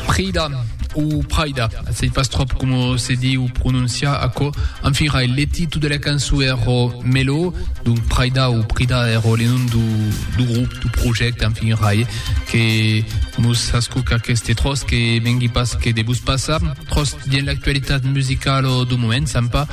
Prida, o Praida, sei pas tròp coma se diu prononciar aquò, enfin rai, le titu de la cançon es ro Melo, donc Praida o Prida es ro le nom du grup, du projècte, enfin rai, que mos ascoca aqueste tròç que vengui pas que de vos passar, tròç dins l'actualitat musicala du moment, sèm pas.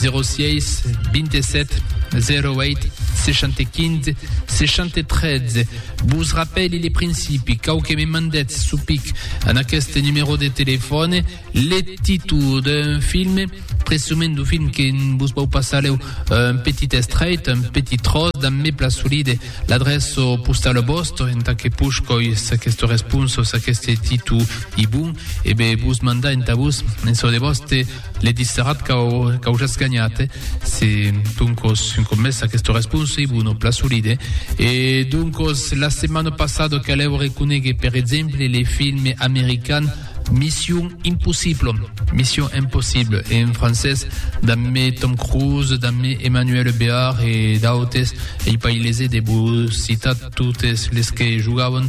06 27 08 65 63. Vos rappeli le principi, cau que me mandètz su pic en aquest numèro de telefòne le títol d'un film, presumènt du film que vos vau passar leu un petit estrèit, un petit tros, damb me plasoli de l'adreço postal vòstre, entà que push coi s'aquesta responsa o s'aqueste títol i bon, e be vos mandar entà vos en çò de vòste Le disserat qu'au jatz ganhat, se doncos un còp mès aqueste responsiblo non pla solide, e doncos la setmana passada calèu reconéguer per exemple le film american Mission Impossible, Mission Impossible en francés, dambe Tom Cruise, dambe Emmanuel Béard e d'autes, ei pas ilese de vos citar totes les que jogavan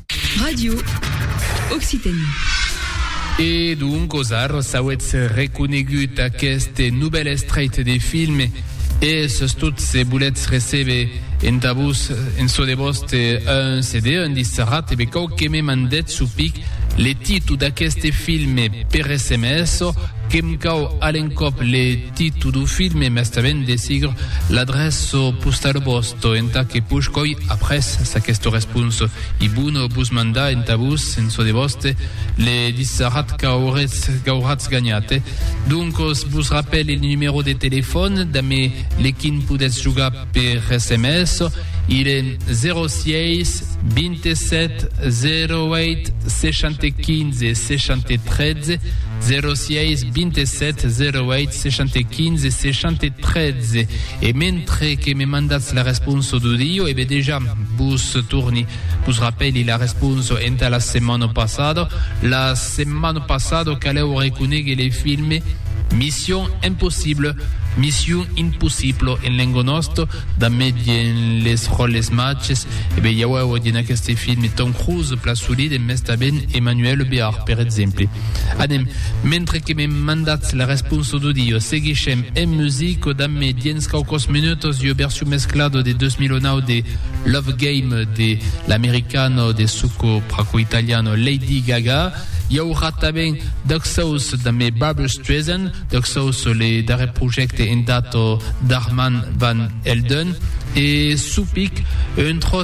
Radio Occitanie. E donc os arros auetz reconegut aqueste novèl estreit de film e sustot se voletz recebe entà vos en çò de vòste un CD, un disc'arrat, ebe cau que me mandètz su pic le titu d'aqueste film per sms o que'm cau a l'encòp le titu du film e mestament de sigur l'adreço postau vòste. Tò entà que push coi après s'aquesto respons i bono bus mandar entà vos en çò de vòste le dissarat qu'auretz qu'auratz ganhat. Doncos vos rapèle le numèro de telefòn damé le quin podètz jogar per sms, il è 06 27 08 65 63. 06 27 08 75 613 e mentre que me mandatz la responsa d'audio e be dejà vos torni vos rapèli la responsa entà la setmana passada la setmana passada calèu reconegue le filme Mission Impossible Mission Impossible en lenga nòsta da medien les ròles matges e be iauèu dins aqueste filme Tom Cruise pla solide mès tanben Emmanuel Béard per exemple Anem, mentre que me mandatz la responsa d'audio, seguishem en musica damb me dens quauquòs minutos ua version mesclada de 2009 de Love Game de l'americana de suco praco-italiana Lady Gaga. I aurà tanben Duck Sauce damb me Barbra Streisand, Duck Sauce, le darrèr projècte en data d'Armand Van Helden, e Supic, un tròç